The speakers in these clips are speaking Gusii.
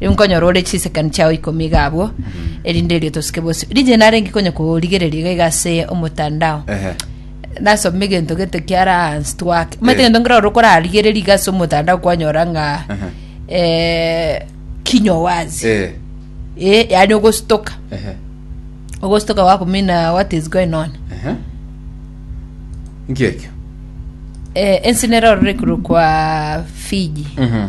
Inkonyora ore chisekani chiao ikomi iga abwo, erinde erio tosike bosio. Rigiya narenge konya korigereria iga iga ase omotandao. Ehe. Nasome egento gete kiara hansi twake. Omanyete Eh. egento nkere ore okorarigereria iga ase omotandao kwanyora ng'a Aha. eh, kinywa wazi. Eh, Eh, yaani ogostoka. ehe, Ogostoka wakumina what is going on. ehe. Nkiekio. Eh, ense nero rore korokwa Fiji. Mhm.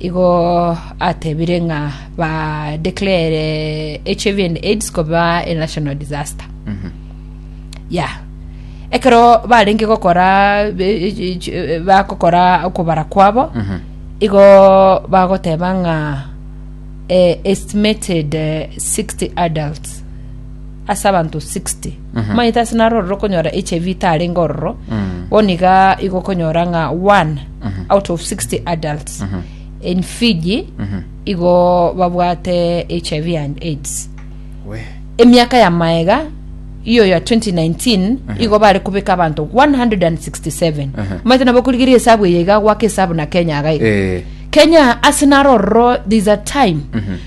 Igo atebire ng'a ba declare HIV and AIDS koba a national disaster. Ya. Ekero barenge gokora be- e- e- e- bagokora okobara kwabo, igo bagoteba ng'a eh, estimated eh, 60 adults ase abanto 60 omanyete ase naro ororo okonyora hiv itarenge ororo bo niga igo okonyora ng'a one out of 60 adults in fiji igo babwate hiv and aids we emiaka ya maega iyo ya 2019 igo bare kubeka abanto 167 Aha. omanyete nabo okorigeria esabu eye iga gwaka esabu na kenya iga iga Eh. kenya ase naro ororo there's a time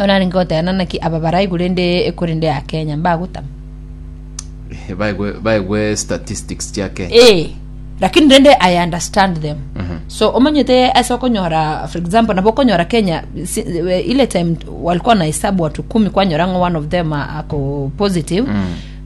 Orarenge goteba ng'a naki aba baraigwe rende ekorende ya Kenya mbagotama. baigwe baigwe statistics chia Kenya Eh, lakini rende I understand them. So omanyete ase okonyora for example nabo okonyora Kenya si, eh, ile time walikuwa na hesabu watu kumi kwanyora ng'a one of them a- ako positive.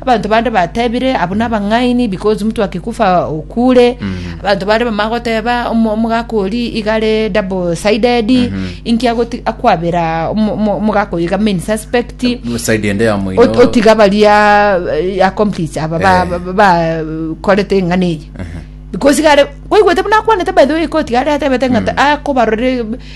Abanto bande batebire, Abwo nabang'aini, because mtu akikufa okure. Abanto bare bamanye goteba, "Omo- omogaka oria iga are double sided, inki agoti- akwabera omo- omo- omogaka oyo iga main suspect. side ende ya moino Ot- otiga baria eh, accomplice aba ba- Eh. ba- ba- bakorete eng'ana eye because iga are kwaigwete buna akwanete by the way ikoti iga are atebete ng'a akobarore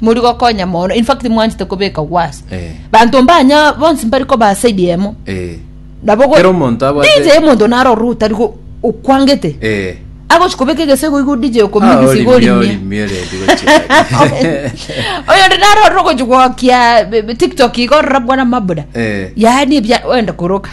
muri gokonya mono in fact mwanchete kobeka worse Eh. banto mbanya bonsi mbari koba side yemo Eh. nabo go- Kera omonto abwate- DJ omonto naro orure otari go- okwangete Eh. agochi kobeka egesego igo DJ Ah, okomigisa orimio, igo orimia orimio rendi gochia. oyo ndi naro orure ogochi gwokia be- be- tiktok igo orora bwana mabuda Eh. yaani ebia wenda koroka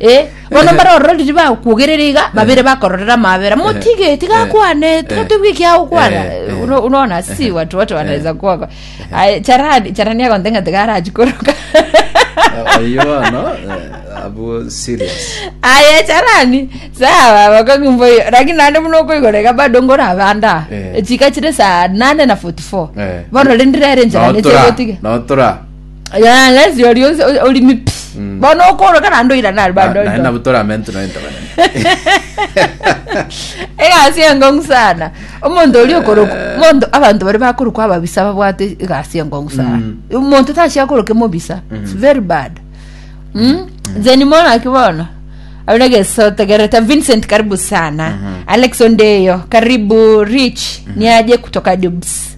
Eh, bono mbare ororo riria bagokwogerera iga babere bakororera amabera motige tiga akwane tiga toigwe ekia agokwana Eh, uno- unaona si watu wote wanaweza kuoga Aye, charani charani agonte ng'a tiga arachi koroka oyo bono eh, abu serious aye charani sawa bakong'umba oyo lakini naende buna okoigorega bado ngorabanda Eh. chika chire saa nane na 44 Eh. bono rende rere nchara Notora, nechegotiga notora Ya, lesi ori onse o- orimi pi Mm. bono okoroka naende oirana ari bande naye oito nabo toramentu naye ntabanene egasi engong'u sana omonto oria okoroka omonto abanto baria bakorokwa ababisa babwate egasi engong'u sana Mm. omonto tachia akoroke mobisa It's very bad Mm? then mono aki bono abere egeso tegerete vincent karibu sana alex ondeyo karibu rich niaje kutoka dubs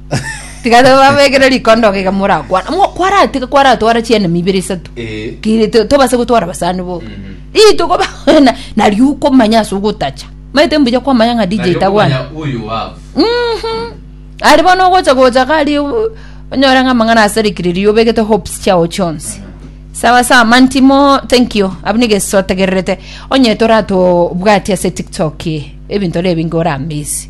tiga tobabekere rikondoga iga morakwana Mo- kwara tiga kwaratwara chienemi ibere isato Eh. Ki- to- tobase gotwara basani boka rituko bakwana nario okomanya ase ogotacha maete mbuya kwamanya ng'a dj tagwana Nario okomanya uyu wavu. Mhm. ari bono ogocha gocha gari u- onyore ng'a amang'ana asarikiriri obegete hopes chiao chionsi sawa sawa mantimo thank you abu nigesotegererete onye toratobwati ase tiktok ebinto rero ebinge oramisi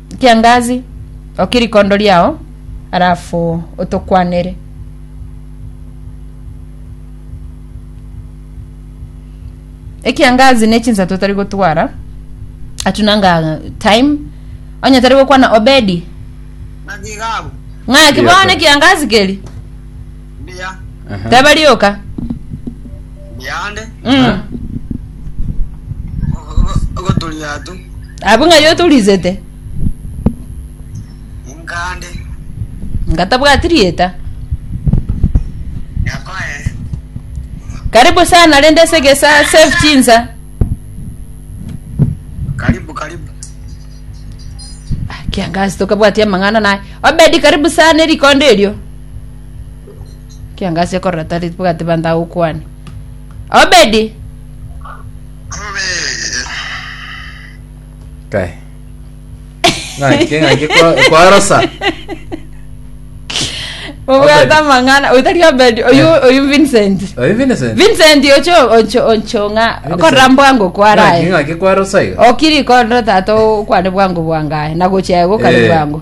Kiangazi, okia rikondo riao, alafu otokwanere. Ekiangazi ne chinsa totari gotwara atunanga time onye tari gokwana obedi ng'aki bono ekiangazi keri Mbuya, Aha. Teba rioka. mbuya ande, Mm. ogoturia atu, Abu ng'a yoturisete. inkande, Ngatabwati rieta. nyakoe, Karibu sana rende segesa save chinsa. karibu karibu, Ah, Kiangazi tokabwati amang'ana naye. Obedi karibu sana erikondo erio. Kiangasi ekorora tari bwati banda agokwane. Obedi. Kae. Ng'aki ng'aki kwa- kwarosa. Obwate amang'ana otari Obedi oyu oyu Vincent. Oyo Vincent. Vincent ocho ocho ocho ng'a Vincent. korora mbwango Ng'aki kwarae. ng'aki kwarosa iga. Okiri korora tata okwane bwango bwangae na gochia goka Eh. bwango.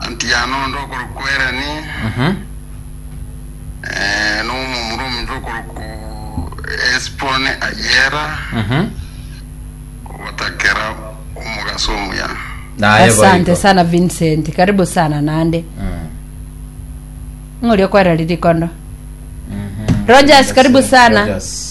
Anti yane onde okorokwa Erani, na omomura omonto okorokwa Hesiboni ayera ogotakera omogaso omuya. Naye Asante boigo. sana Vincent, karibu sana nande. Ng'ori okwereri rikondo. Rogers, karibu sana. Rogers.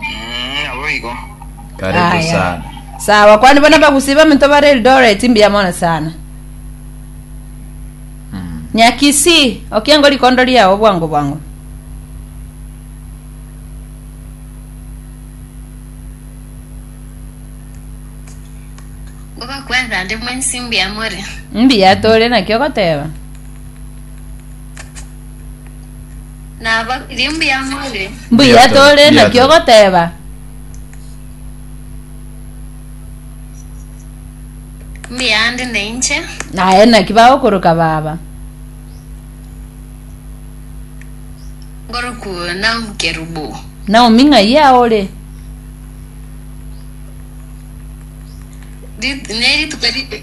Mm, naboigo. Karibu Haya. sana. Sawa, kwani bona bagusi baminto bare Eldoret mbuya mono sana. Mm. Nyakisi, okiengo likondo liao bwango bwango. Ngoba kwanza ndi mwensi mbuya more. Mbuya tole nakio goteba. Nabakirie mbuya more. Mbuya tore Mbuya naki tore. ogoteba. Mbuya nde nainche. Aye naki bagokoroka baba. Ngoroku Naomi Kerubo. Naomi ng'ai aa ore? Rit- Ne rituko ri-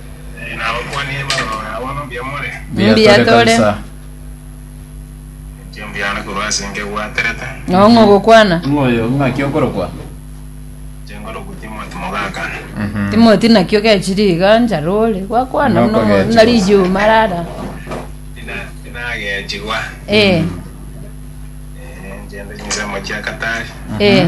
Mbuya tore. Ng'o ogokwana? Timoti naki ogechire iga nchara ore. Gwakwana Noko buna ogechigwa. buna rijuma rara. Eh. Eh.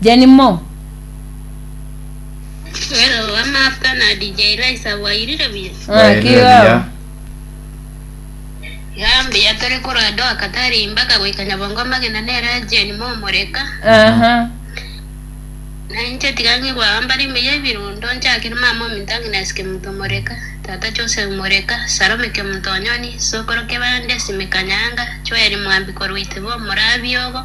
Jenny Mo. Wero wa Maabka na DJ Raisa bwairire buya. Ng'aki Bwairire iga? buya. Iga mbuya tore korwa Doha Katari mpaka goika Nyabongo amagena nere Jane Mo Omoreka. Aha. Na inche tiga ng'igwa mbare mbuya ebirundo nchakere mama ominto Agnes Kemunto Omoreka, tata Joseph Omoreka, Salome Kemunto Onyoni, sokoro Kebande Sime Kanyanga, Joel Mwambi korwa Itebo Omorabiogo,